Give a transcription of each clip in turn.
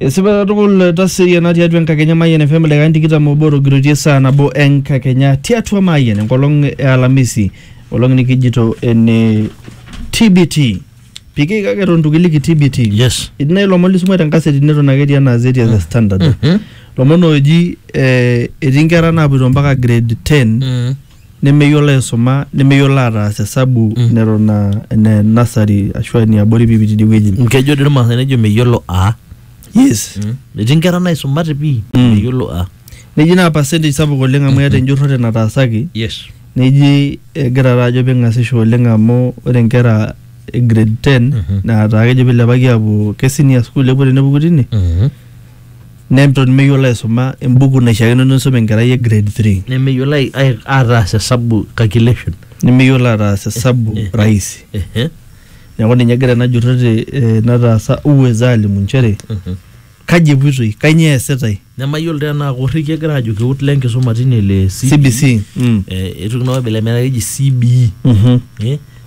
Esipa katukul taseriana tiatua enkakenya Mayian FM ildaikani tikitam obo otogiroitie saa nabo enkakenya tiatua Mayian enkolong e Alamisi olong nikijito ene TBT piki kake eton itu kiliki TBT Yes. etii nai ilomon lisuma te nkaseti neton ake etii enaa zeti as a standard Mhm. lomon ooji eh, etii nkera naapoito mpaka grade 10 nemeyiolo aisuma nemeyiolo ataas esabu Mm. neton aa ene nasari ashu aa eniabori piipi tidie wueji nkejo dii irmaasai nejo meyiolo a yes etii nkera naisumate pii Mm. meyiolo a neji naa percentage sapuk oleng amu eeta enjurrore nataasaki yes neji egira taa ajo ping'asisho oleng amu ore nkera e grade 10 Mhm. naa taa kejo pilepaki aapuo ke senior school epuo tenepuku tine Neton meyiolo aisuma embuku naishiakino nisum enkerai e grade 3. Nemeyiolo ai- ai- ataas esabu calculation. Nemeyiolo ataas esabu Eh, eh. rahisi. Ehe. Neeku ninye egira ena jurroti eh, nataasa uweza alimu nchere Mhm. kaji epuitoi, kainyoo eesitai Nemayiolo tenaa korriki egira aajo keut le nkisuma tine le CBC. Mm. Eh, eitoki naa orbila metaa keji CBE. Mhm. Eh,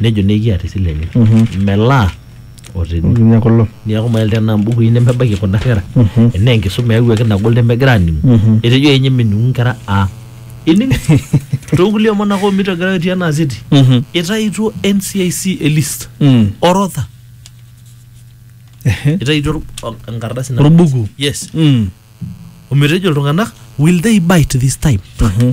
nejo naa ekiata esile enye melaa otene Nikinya kulo. niaku mael tenaa mbukui nemebaiki kuna kera enaa enkisuma eyawuaki nagol nemegira aningu etejo enye meningu nkera a ining toonkulie omon ake omito egira aitio enaa city Mhm. itaituo NCIC e list Mm. orodha Ehe. itaituo or- o- enkardasi na- Orbuku. yes Mm. ometejo iltung'anak will they bite this time Mhm.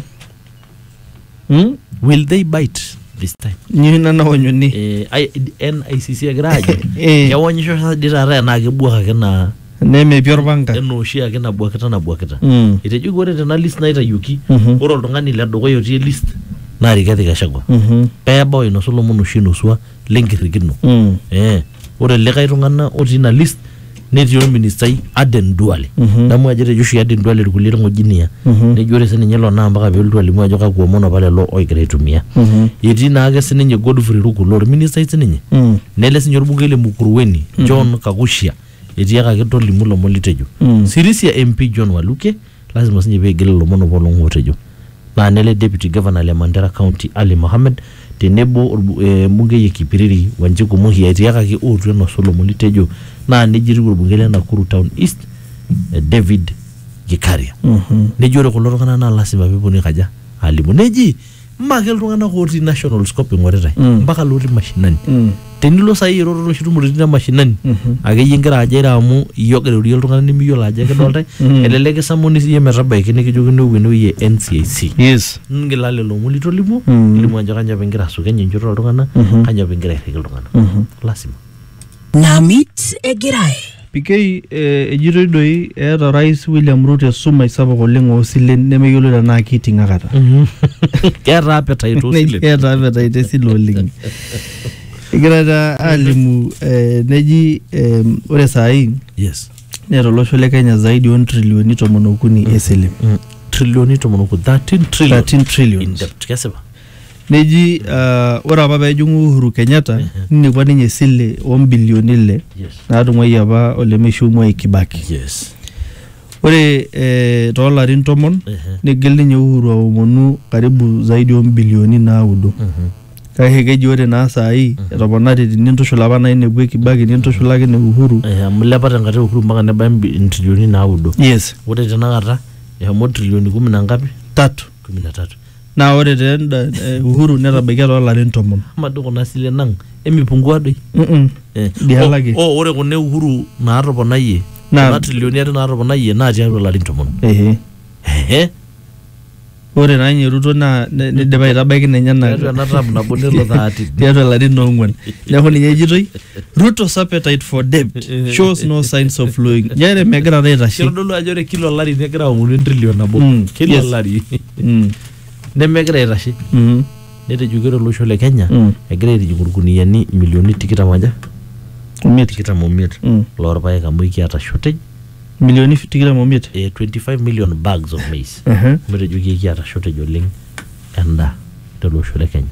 Hmm? will they bite this time Nyi nana onyoni. Eh, ai- NICC egira ajo Eh. kewonyisho sa dii taata enaa kebuak ake naa Nemepi orpanga. enaa oshi ake nabuakita nabuakita Mm. etejo ore tena list naitayioki Mhm. ore oltung'ani le dukuya otii list naa Rigathi Gachagua Mhm. pebau ainosu lomon oshi inusua lenkirrikino Mm. eh, ore likae tung'ana otii ina list netii olministai Aden Duale Mhm. damu ajo etejo oshi Aden Duale irkulie ng'ojinia Mhm. nejo ore sininye ilo naa mpaka peelotu alimu ajo kakwa omon apa lelo ogira aitumia Mhm. etii naake sininye Godfrey Ruku loo olministai sininye Mm. nele sininye olbungei le Mukuruweni John Kakushia etiakaki tolimu ilomon litejo Mm. Sirisia MP John Waluke Lasima sinye pee igil ilomon opa olong'u otejo naa nele Deputy Governor le Mandera County Ali Mohammed tenebo embungei e Kipiriri Wanjiku Muhi etiakaki ootu enosu ilomon litejo naa neija etiu olbungei le Nakuru Town East David Gikaria. Nejo ore kulo tung'anak naa lasima pee epwonu aikaja? aalimu. Neji mme ake iltung'anak otii nationals kop ing'oritae Mm. mpaka lotii mashinani Mm. tenilo sai iroro noshi tumoritin e mashinani Mhm. akeyie ingira ajo ira amu iyie ogira airorie iltung'anak nimiyiolo ajo ekidoltae Mm. elelek kisamuni siyie metabaiki nikijokini opuo enewueji e NCIC yes ngila lelo omon litolimuo Mm. ilimu ajo kanyo apa ingira asukeny enchoto oltung'anak Mhm. kanyo apa ingira airriki iltung'anak Mhm. lasima Namit egirai. PK, eh, ejitoi doi eeta orais William Ruto esumash sapuk oleng oosilen nemeyioloi tenaa keiting akata. Keeta appetite Neji oosilen. eeta appetite esile oleng. Egira taa alimu eh, neji eh, ore saai Yes. neeta olosho le Kenya zaidi o ntrilioni tomon okuni esile. Trilioni tomon okuni, 13 trillion. 13 trillions. Kesipa. neji ah, ore apa pejing'u Uhuru Kenyatta ninepua ninye esile ombilioni ile Yes. natung'uayie apa olemeishiu Mwai Kibaki Yes. ore eh, toolarin tomon Ehe. nigil ninye Uhuru aomonu karibu zaidi ombilioni naudo Mhm. kake keji ore naa saai etoponari tinintushul apa nainepua Kibaki nintushulaki ne Uhuru Eh, amu ilepa tenkata e Uhuru mpaka nebaya mbi- intrilioni naudo. yes Ore tenakata eshomo trilioni kumi na ngapi? tatu kumi na tatu naa ore te enda eh, uhuru netabaikia too larin tomon ama doi kuna silen ang emipungua doi Mm-mm. Eh, Diala o- ake. o ore kuna e uhuru naatoponayie Naa- kuna trilioni are naatoponayie naa tiatua larin tomon Ehe. Ehe. ore naa ninye ruto naa ne- nidipa aitabaiki ninye ena tiatua ena tam nabo nelo thati tiatua larin oong'uan neeku ninye ejitoi Ruto's appetite for debt shows no signs of flowing. Njere megira na aitashe. kitodolu ajo ore kila olari negira aomonu entrilion nabo Mm, kila yes. olari Mm, nemegira aitashe mhm. netejoki ore olosho le kenya Mm. egira aitijingu irkuniyiani milioni tikitam aja Omiet. tikitam omiet Mm. loorpaek amu ekiata shortage Milioni tikitam omiet. eh, 25 million bags of maize Ehe. metejoki ekiata shortage oleng endaa tele osho le kenya